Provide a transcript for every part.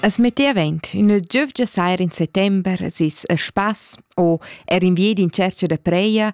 As metti avent üna giövgia saira in settember sis a spass o er in viedi in cerca da preia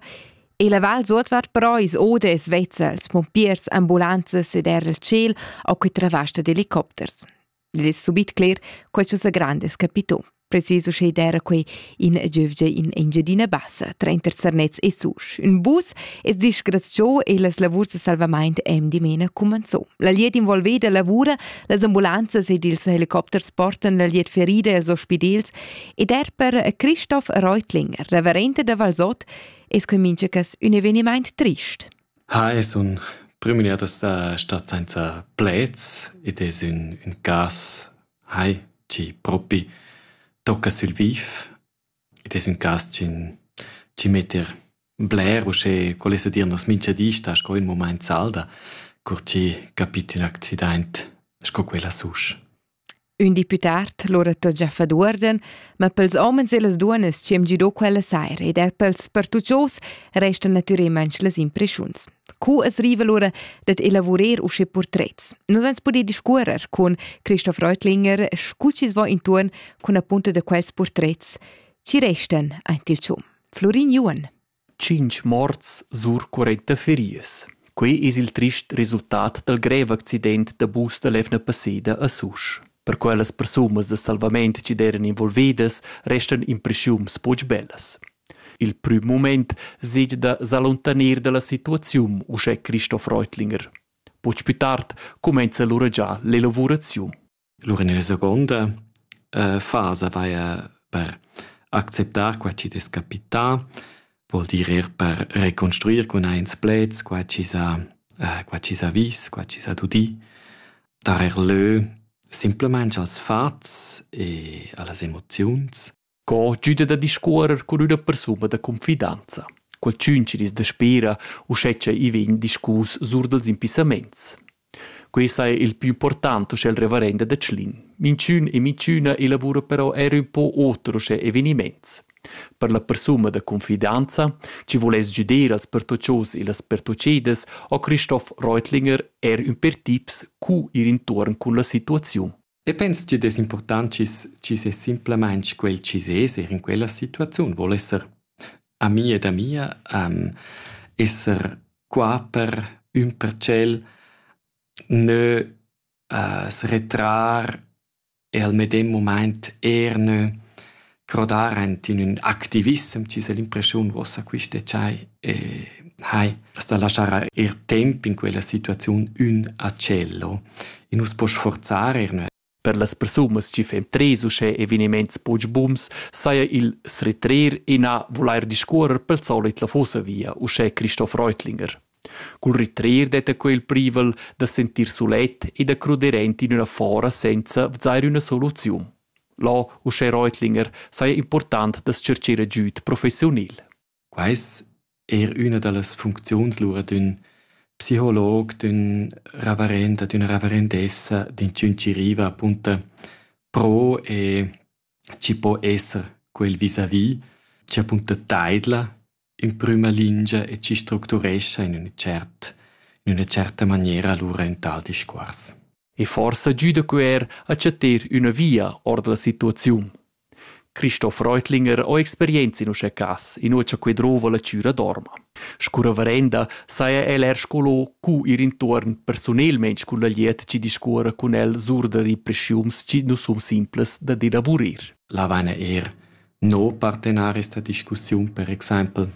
e la val suotvart però is oda es vezza als pompiers, ambulanzas ed er al tschel ho que travasta d'helicopters. Id es subit cler co cha sa grand es capito. Precis uschè d'era quei in giuvgia in Engiadina Bassa, trenta sarnets e susch. Un bus es disgraziò e las lavurs de salvamaint em dimena cumanzò. La liet involveda lavura, las ambulanzas ed ils helicopters portan la liet ferida als ospidels ed er per Christoph Reutlinger, reverente da Valsot, es cominciacas un evenimaint trist. Ha es un prümier da sta stat sainza pleds ed es ün, ün cas Hai, tgi propi tocca sül vif. Id es ün cas chi chi met er bler uschè, quel es da dir nos minchadista sco ün mumaint salda, cur chi capit ün accidaint sco quel a Susch. Ün deputat lura t'ho già fat uorden, ma pels homens e las duonnas chi am gido quella saira ed er pels pertuchos restan natürelmaing las impreschuns. Co es riva lura dad elavurer usche portrets? Nos ans pudè discuorrer cun Christoph Reutlinger, scu chi's vo intuorn cun appunto da quels portrets. Chi restan aint il cium? Florin Juan. Cinch morts sur 40 ferias. Quei es il trist resultat dal greve accident da bus da l'Evna passeda a Susch. Per quellas persunas de salvament che deran involvidas restan impressiuns poch bellas. Il prüm mumaint sej da s'allontaner da la situaziun uschè Christoph Reutlinger. Poch plü tard cumainza lura già l'elavuraziun. Lura nella seconda uh, fasa vaja per acceptar qua chi'd es capità, vuol dir eir per reconstruir cun aint pleds qua chi s'ha uh, qua chi s'ha vis, qua chi s'ha dudì, dar er lö simplamaing als fats e a las emoziuns Co güda da discuorrer cun üna persuna da confidanza? Qualchün chi dis daspera uschè cha i vegn discus sur dals impissamaints. Quest saja il più important uschè il reverenda da Tschlin. Minchün e minchüna elavura però eir ün po oter uschè evenimaints. Per la persuna da confidanza, chi voless güder als pertoccios e las pertocedas, ho Christoph Reutlinger eir ün per tips cu ir intuorn cun la situaziun. E pens tg'id es important chi's chi's es simplamaing quel chi sez eir in quella situaziun voul esser ami ed amia, esser qua per ün per tschel, nö s'retrar e al medem mumaint eir nö crodar aint in ün activissem chi s'ha l'impreschiun uossa quist decai e hai as da laschar eir temp in quella situaziun ün a cello. I nu's po sforzar eir nua Per las persunas chi fan tres uschè evenimaints poch buns saja il s'retrer e na vulair discuorrer pel solit la fossa via, uschè Christoph Reutlinger. Cul retrer detta quel privel da sentir sulet e da cruder aint in üna fora senza vzair üna soluziun. Là uschè Reutlinger saja important da tschercher agüd professiunil. Quai es eir üna da las funcziuns lura d'ün psicolog, d'ün ravarenda, d'üna ravarendessa, d'inchün chi riva apunta pro e chi po esser quel vis-à-vis, chi apunta taidla In prüma lingia e chi structurescha in üna tschert in üna tscherta maniera lura ün tal discuors. E forsa güda que eir a chattar üna via our da la situaziun. Christoph Reutlinger ho experienza in uschè cas, inua cha que drouva la chüra d'orma. Scu reverenda saja el eir sco cu ir intuorn persunelmaing cun la glied chi discuorra cun el sur da represchiuns chi nu sun simplas dad elavurir. Là vaina eir no partenaris da discussiun, per exaimpel